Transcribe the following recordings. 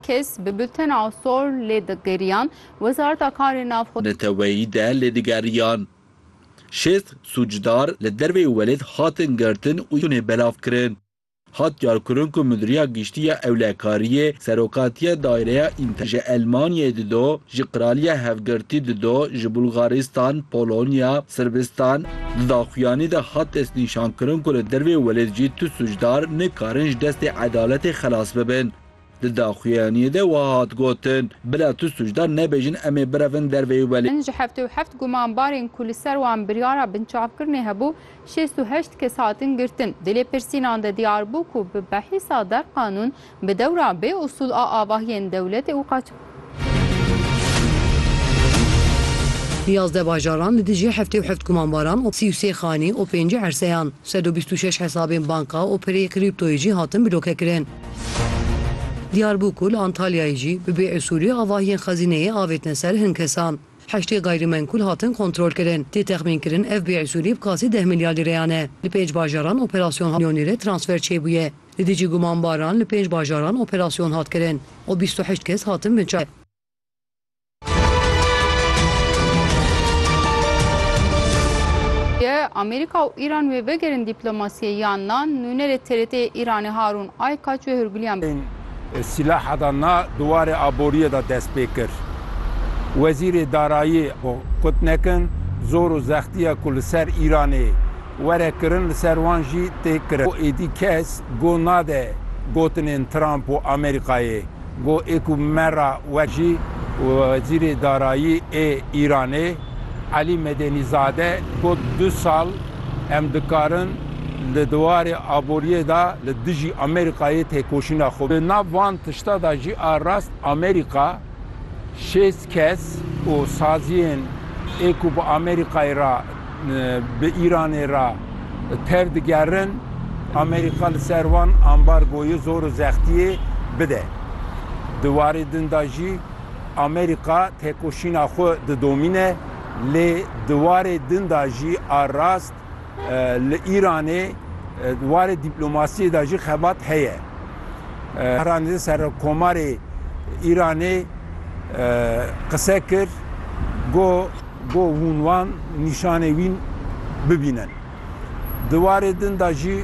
Kes bi bultena sor lê digeriyan Wezareta Karên Navxwe. Neteweyî de lê digeriyan. Şêst sûcdar li derveyî welêt hatin girtin û yûnê belav kirin. Hat diyarkirin ku Mudîriya Giştî ya Ewlekariyê Serokatiya Daireya Înter ji Elmanyayê dido, ji Qiraliya Hevgirtî dido, ji Bulgaristan, Polonya, Sirbistan. Di daxuyanî de hat destnîşankirin ku li derveyî welêt jî tu sûcdar nikarin ji destê edaletê xelas bibin. Di daxuyaniyê de wiha hat gotin, Bila tu sûcdar nebêjin em ê birevin dervê û belê. Ji heftê û heft gumanbarên ku li ser wan biryara binçavkirinê hebû, şêst û heşt kes hatin girtin. Di lêpirsînan de diyar bû ku bi behîsa der qanûn bi dewra bê usûl a avahiyên dewletê û Yazdeh bajaran li dijî heftê û heft gumanbaran û sî û sê xanî û pêncî erseyan, sed û bîst û şeş hesabên banka û pirê krîptoyê jî hatin blokekirin. Diyarbûkûr li Antalyayê jî bi bêusûlî avahiyên xezîneyê avêtine ser hin kesan. Heştê gayrîmenkûl hatin kontrolkirin. Tê texmînkirin ev bêusûlî bi qasî deh milyar lîreyan e. Li pênc bajaran operasyon milyon lîre transfer çêbûye. Li dijî gumanbaran li pênc bajaran operasyon hat kirin û bîst û heşt kes hatin binçavkirin. Amerîka û Îran wê vegerin dîplomasiyê yan na, nûnerê TRT'ê Îranê Harûn Aykaç wê hûrgiliyan bi. Sîlaha da na di warê aboriyê de dest pê kir. Wezîrê Darayî got nekin zor û zextiya ku li ser Îranê Were kirin li ser wan jî tê kirin. Ku êdî kes go nade gotinên Trump û Amerîkayê. Go ê ku me re wek jî Wezîrê Darayî ê Îranê Elî Medenîzade got du sal em dikarin li diwarê aboriyê de li dijî Amerîkayê têkoşîna xwe bi nav van tişta de jî a rast Amerîka Şêst kes û saziyên ê ku bi Amerîkayê re bi Îranê re tev digerin, Amerîka li ser wan ambargoyê zor û zextiyê bide. Di warê din de jî Amerîka têkoşîna xwe didomîne lê di warê din de jî a rast Li Îranê di warê dîplomasiyê de jî xebat heye. Bahrami Serokkomarê Îranê qise kir ku hûn wan nîşanê wî bibînin. Di warê din de jî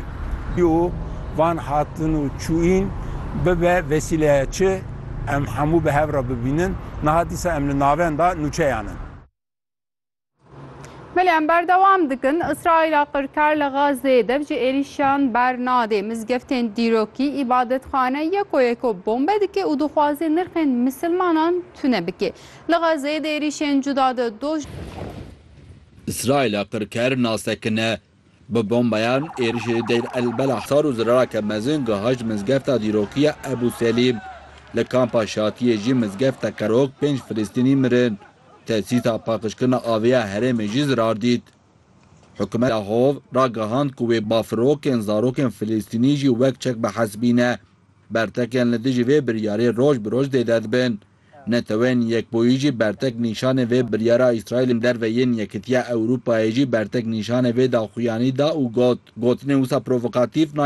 û van hatin û çûyîn bibe vesîleya çi em hemû bi hev re bibînin. Niha dîsa em li navenda nûçeyan in. Belê em berdewam dikin Îsraîla qirkar li Gazeyê dev ji êrîşan bernadê. Mizgeftên dîrokî, îbadetxane yeko yeko bombe dike û dixwaze nirxên misilmanan tune bike. Li Gazeyê di êrîşên cuda de doj. Îsraîla qirkar nas dikine Bi bombeyan êrişê Deir el-Belah sar û zirareke mezin gihişt mizgefta dîrokî ya Ebû Selîm. Li kampa Şatiyê jî mizgeft teqerok pênc Filistînî mirin. Tesîsa paqijkirina avê ya herêmê jî zirar dît. Hikûmeta Hov ragihand ku wê bafirokên zarokên Filistînî jî wek çek bihesibîne. Bertekên li dijî vê biryarê roj bi roj zêde dibin. Neteweyên Yekbûyî jî bertek nîşanê vê biryara Îsraîlê li derve yên Yekitiya Ewrûpayê jî bertek nîşanê vê daxuyanî da û got, Gotinên wisa provokatîf nayên.